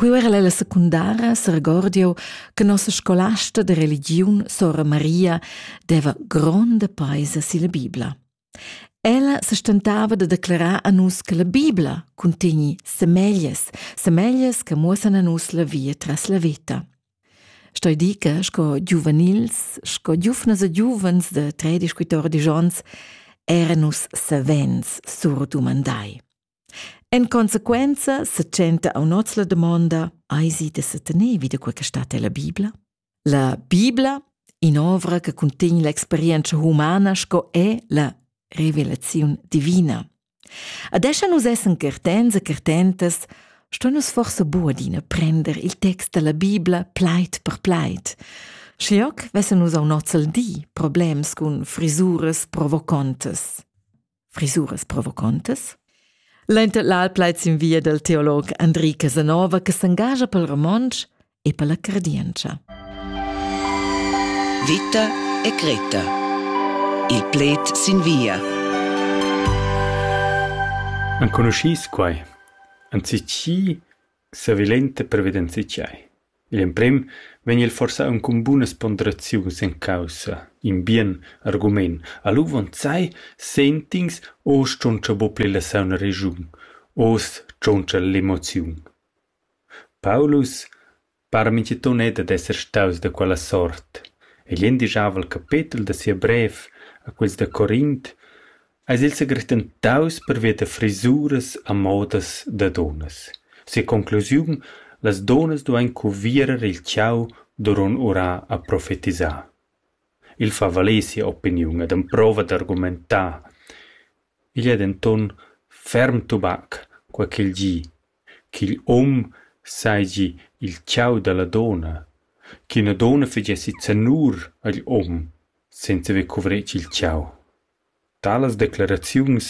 Quei era la secundara seregordiu che nossa scolasta de religiun, sora Maria, deva gronda paisa silla Bibla. Ella se stentava de declarar a nus che la Bibla contegni semeglies, semeglies che muossan a nus la via tras la veta. Stoi di che, sco giuvenils, sco giufnas e giuvens de 13-14 ons, era nus savens surdumandai. En consequenza setschenta aunz la damonda eisi da setener vi da quei che stat ella Bibla. La Bibla, in'ovra che cuntegn l'experienza humana sco è la revelaziun divina. Adesso nus essen certens e certentas, sto nus forse bu adina prender il text della Bibla pleit per pleit. Schlioc vessen nus au nozzel di problems cun frisuras provocontes. frisuras provocontas. L'inter l'al plaid sin via del teolog Andri Casanova che s'engagia pel romontsch e per la cardientscha. Vita e Greta. Il pled sin via. Enconuschis quai? Anzi chi Savilenta prevedenzi tgei? Igl emprem vegn el forsa aunc cun bunas ponderaziuns en caussa, in bien argument. A l'uvonzai sent'ins oz tschontscha buca pli la sauna regiun, oz tschontscha l'emoziun. Paulus para mintgaton era dad esser staus da quella sort. Igl endischava il capetel da sia brev a quels da Corint eis il segretentaus pervia da frisuras a modas da dunnas. Sia conclusiun: las dunnas duein cuvierer il tgau duront urar a profetisar. Il fa valer sia opiniun ed emprova d'argumentar. Igl ei denton ferm tubac, quei ch'il gi, ch'igl um seigi il tgau dalla dunna, ch'ina dunna fegessi zanur agl um senza haver cuvretg il tgau. Talas decleraziuns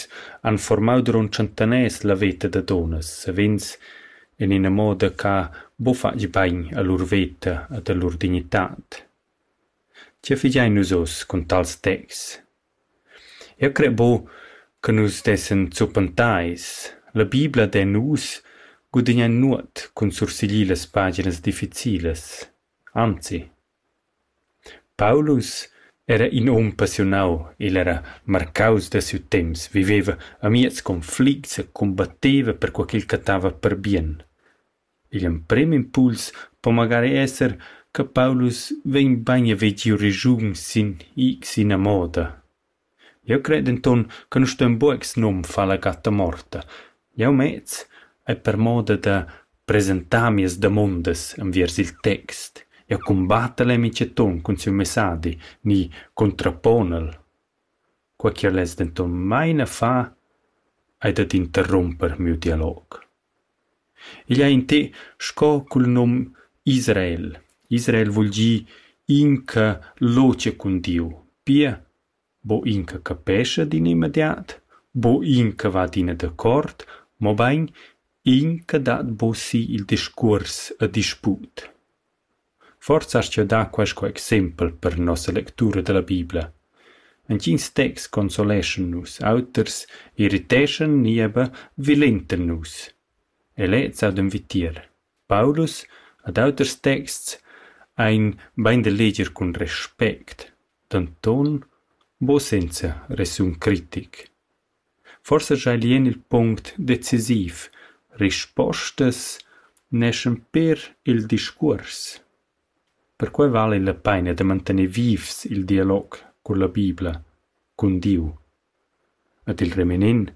han formau duront tschentaners la veta da dunnas, savens en ina moda che buca fatg bein a lur veta ed a lur dignitad. Tgei figein nus oz cun tals texts? Eu cre bu che nus dessen zuppentais. La Bibla de nus gudigna nuot cun sursiglir las paginas difficilas. Anzi, Paulus era in um passiunau, igl era marcaus da siu temps, viveva amiez conflicts e combatteva perquei ch'el cattava per bien. Igl emprem impuls po magari esser che Paulus vegn bein a vegir regiun sin ina moda. Jeu cret denton che nus ston buca snum far la gatta morta. Jeu mez ei per moda da presentar mias damondas enviers il text. Jeu cumbattel e mintgaton cun siu messadi ni contraponel. Quei che less denton mai na far ei dad interrumper miu dialog. Igl ei in té sco cul num Israel. Israel vul gir inca lotga cun Diu. Pia, bo inca capescha d'in immediat, bo inca va adina dacuort, mobein inca dat buca si il discuors e disput. Forsa astga dar quaisco exempel per nossa lectura dalla Bibla. Entgins texts consoleschan nus, auters irriteschan ni eber vilentan nus. E lez ha d'envitier. Paulus ad auters texts ein bein da leger cun respect, denton buca senza resun critic. Forsa schai lien il punct decisiv: rispostas neschan pér il discuors. Perquei vala la peina da mantener vivs il dialog cun la Bibla, cun Diu. Ed il reminent: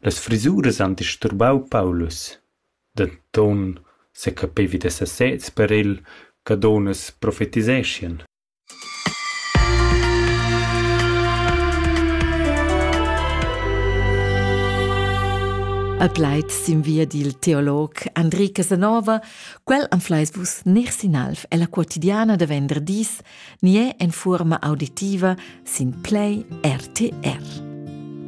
las frisuras han disturbau Paulus. Denton secapevi da sesez per el che dunnas profetiseschien. A plaid sin via dil teolog Andri Casanova, quel am fleis vus ner sinalf ella quotidiana da venderdis, nie en fuorma auditiva sin Play RTR.